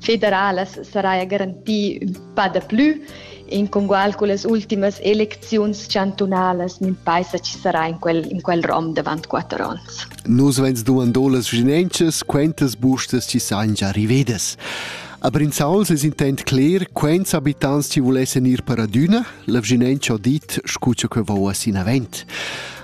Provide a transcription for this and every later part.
federalas saraja garantì ün pa daplü in congual cullas ultimas elecziuns chantunalas nun paisa chi sarà in quel, in quel rom davant quatter ons. Nus vegns duando las vicinanzas, quentas bustas chi sajan già rivedas. A Brinzauls es intent cler quants abitants chi vulessan ir per adüna, la vicinanza ho dit scu cha que vouva sinavent.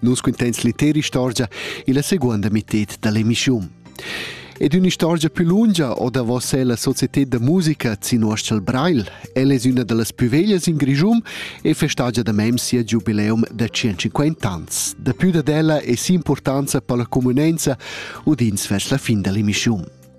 Nus cuntens l'intera istorgia illa seguonda mitted da l'emissiun. Ed ün'istorgia più lungia o davos ella societed da musica Zinuoschel Brail. Ella es üna da las pü veglias in Grischun e festagia da mem sia giubileum da 150 ans. Da pü dad ella es importanza per la comunenza udins vers la fin da l'emissiun.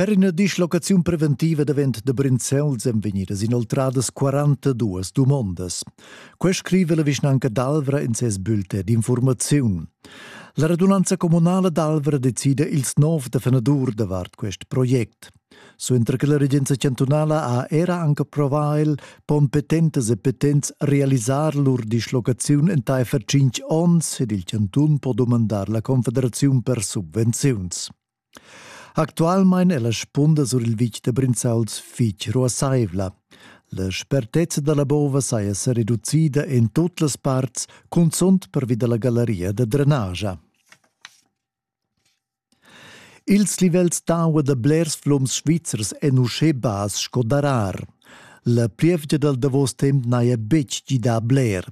Per ina dislocaziun preventiva davent da Brinzels èn vegnidas inoltradas 42 dumondas. Quai scrive la vischnanca d'Alvra in ses bulletin d'informaziun. La radunanza communala d'Alvra decida ils nov da fenadur davart quest project. Suenter che la regenza chantunala ha era anche approvà el, pon petentas e petents realisar lur dislocaziun entaifer 5 onns ed il chantun po dumandar la Confederaziun per subvenziuns. Actualmein è la spunda sur il vitg da Brinzauls fitg ruassaivla. La spertezza da la bova saja sa reducida en tut las parts, cunzunt pervi da la gallaria da drenagia. Ils livels d'aua da blers flums svizzers èn uschè bass sco darar. La plievgia dal davos temp n'haja betg gidà bler.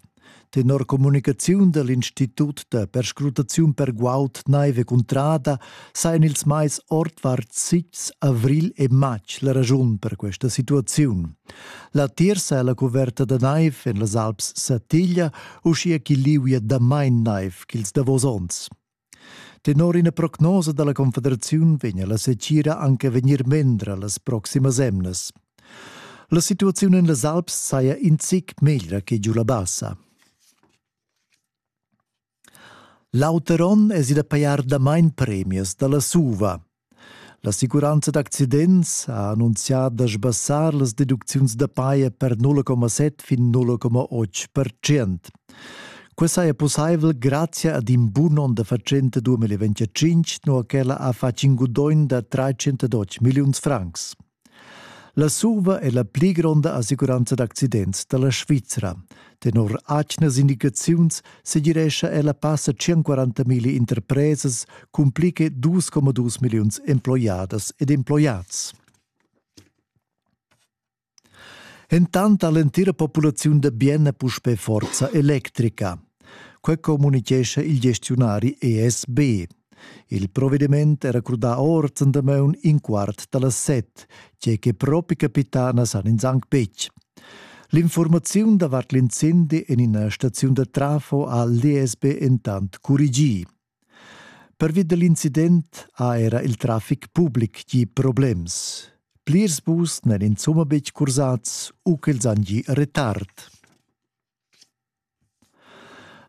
Tenor communicaziun dell Institut da perscrutaziun per guaud naive cuntrada sajan ils mais ordvart sics avril e matg la ragiun per questa situaziun. La tirsa è la coverta da naiv en las Alps Satiglia, uschia ch'il liu è damain naiv ch'ils davos onns. Tenor ina prognosa dalla Confederaziun vegna la setgira anche vegnir mendra las proximas emnas. La situaziun en las Alps saja in zic meglra che giu la bassa. L'auter onn es id a pajar damain premias da la SUVA – L'assicuranza d'accidents ha annunzià da sbassar las deducziuns da paja per 0,7 fin 0,8 percent. Quest saja pussaivel grazia ad in bun onn da fatschenta 2025, nua ch'ella ha fatg in gudogn da 312 milliuns francs. La Surva è la pli gronda assicuranza d'accidents da la Svizra. Tenor atgnas indicaziuns segirescha ella passa 140.000 interpresas cun pli che 2,2 milliuns emploiadas ed emploiads. Entant ha l'entira populaziun da Bienna puspè forza electrica. Quai communitgescha il gestiunari ESB. Il provediment era crudà ord en damaun in quart da las set, tge che propi capità na san ins anc betg. L'informaziun davart l'incendi en ina staziun da trafo ha l'ESB entant curigì. Pervi da l'incident ha era il traffic public gi problems. Plirs bus n'èn insomma betg cursads u ch'els han gi retard.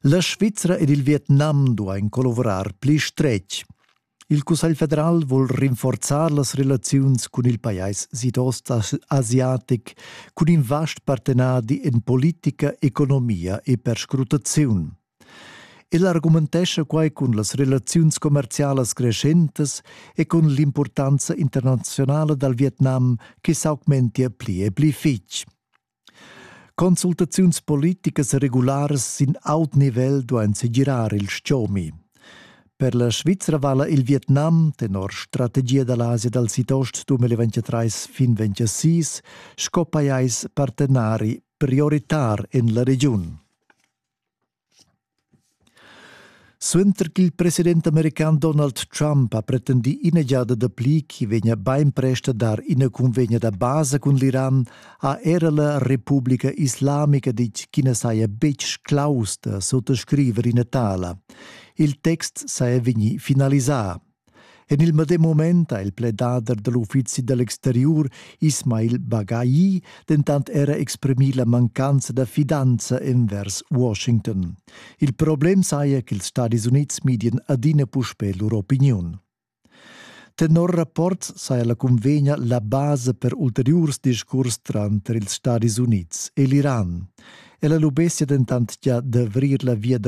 La Svizra ed il Vietnam duain collavurar pli stretg. Il Cussegl federal vul rinforzar las relaziuns cun il pajais sidost-asiatic cun in vast partenadi en politica, economia e perscrutaziun. El argumentescha quai cun las relaziuns commerzialas creschentas e cun l'impurtanza internazionala dal Vietnam che s'augmentia pli e pli fitg. Consultaziuns politicas regularas sin aut nivel duain segirar il stgomi. Per la Svizra vala il Vietnam, tenor strategia da l'Asia dal Sidost 2023 fin 2026, sco pajais partenari prioritar en la regiun. Suenter ch'il president american Donald Trump ha pretendì ina giada dapli ch'i vegnia bainprest a dar ina cunvegna da basa cun l'Iran, ha era la Republica Islamica ditg ch'i na saja betg claus da suttascriver ina tala. Il text saja vegnì finalisà. En il medem mument ha il pledader da l'uffizi da l'exteriur Ismail Baghai dentant era exprimì la mancanza da fidanza envers Washington. Il problem saja ch'ils Stadis Unids midien adina puspè lur opiniun. Tenor rapport saja la cunvegna la basa per ulteriurs discurs tranter ils Stadis Unids e l'Iran. Ella lubessia dentant gia d'avrir la via da